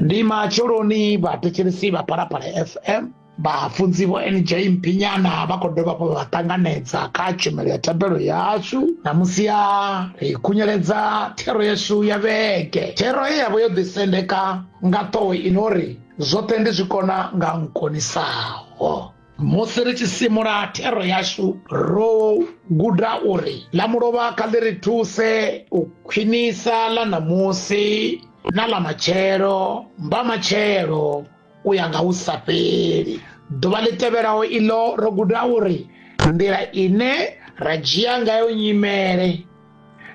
ndi matsheloni vhathetshelesi vha phalaphala fm vhafunzi vho nj mphinyana vha khou dovha hafhu vha ṱanganedza kha tshumelo ya thembelo yashu namusi ya ri khunyeledza thero yashu ya vhege thero ye yavha yo ḓisendeka nga ṱhoho ino ri zwoṱhe ndi zwi kona nga nkonisaho musi ri tshi simula thero yashu ro guda uri ḽa mulovha kha ḽi ri thuse u khwinisa ḽa ṋamusi na ḽa matshelo mba matshelo u ya nga hu sa fheli ḓuvha ḽi tevhelaho iḽo ro guda uri nḓila ine ra dzhia ngayo nyimele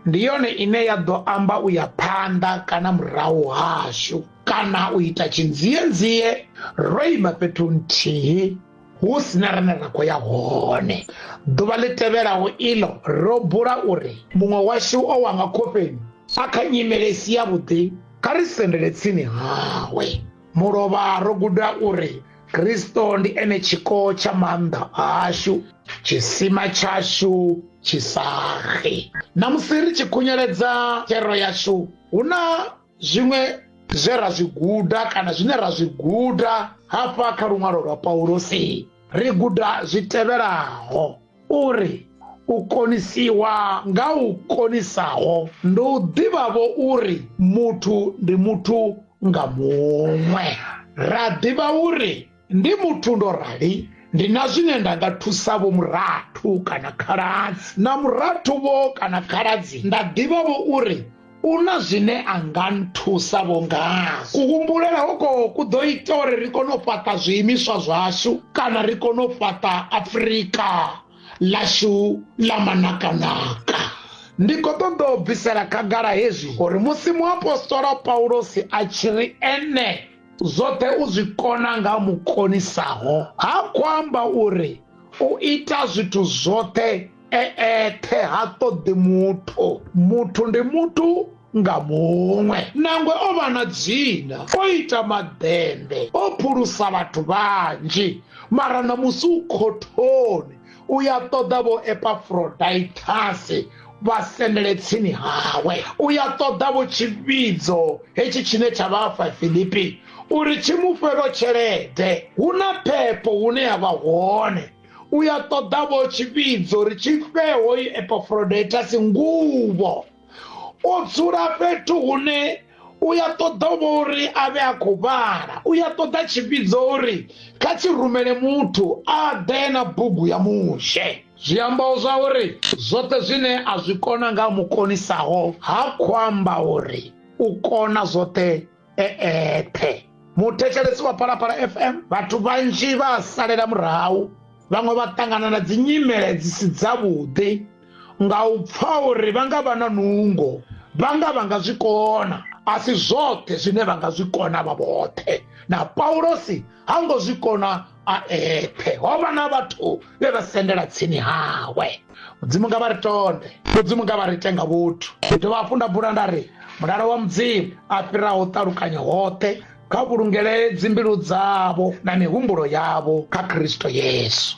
ndi yone ine ya ḓo amba u ya phanḓa kana murahu hashu kana u ita tshinzienzie ro ima fhethu nthihi hu sina rine ra khou ya hone ḓuvha ḽi tevhelaho iḽo ro bula uri muṅwe washu o wanga khofheni a kha nyimele i si yavhuḓi kha ri sendele tsini hawe mulovha ro guda uri kristo ndi ene tshiko tsha maanḓa ashu tshisima tshashu tshisaxe na musi ri tshi khunyeledza thero yashu hu na zwiṅwe zwe ra zwi guda kana zwine ra zwi guda hafha kha luṅwalo lwa paulosi ri guda zwi tevhelaho uri u konisiwa nga u konisaho ndi u ḓivhavho uri muthu ndi muthu nga muṅwe ra ḓivha uri ndi muthu ndo rali ndi na zwine nda nga thusa vho murathu kana khaladzi na murathu vho kana khaladzi nda ḓivhavho uri U na zwine a nga nthusa vho ngazwo. Kuhumbulela hoko ku ḓo ita uri ri kone u fhaṱa zwiimiswa zwashu kana ri kone u fhaṱa Afrika ḽashu ḽa manakanaka. Ndi khou ṱoḓa u bvisela khagala hezwi uri musi muapostola Paulosi a tshi ri ene zwoṱhe u zwi kona nga mu konisaho, ha khou amba uri u ita zwithu zwoṱhe e eṱhe ha ṱoḓi muthu muthu ndi muthu nga muṅwe nangwe o vha na dzina o ita maḓembe o phulusa vhathu vhanzhi mara na musi u khothoni u ya ṱoḓa vho epafroditasi vha sendele tsini hawe u ya ṱoḓa vho tshivhidzo hetshi tshine tsha vha fa filipi uri tshi mu fhe vho tshelede hu na phepho hune ya vha hone u ya ṱoḓa vho tshivhidzo ri tshi fhe hoyu epafrodetasi nguvho u dzula fhethu hune u ya ṱoḓa vho uri a vhe a khou vhala u ya ṱoḓa tshivhidzo uri kha tshi rumele muthu a ḓe na bugu ya mushe zwi amba zwa uri zwoṱhe zwine a zwi kona nga mukonisaho ha khou amba uri u kona zwoṱhe e eṱhe muthetshelesi wa phalaphala fm vhathu vhanzhi vha a salela murahu vhaṅwe vha ṱangana na dzi nyimele dzi si dzavhuḓi nga u pfa uri vha nga vha na nungo vha nga vha nga zwi kona a si zwoṱhe zwine vha nga zwi kona vha vhoṱhe na paulosi ha ngo zwi kona a eṱhe ho vha na vhathu vhe vha sendela tsini hawe mudzimu nga vha ri tonde mudzimu nga vha ri tenga vhuthu ndi dovha hafhu nda bula nda ri mulalo wa mudzimu a fhiraho ṱalukanya hoṱhe kha vhulungele dzimbilu dzavho na mihumbulo yavho kha khristo yesu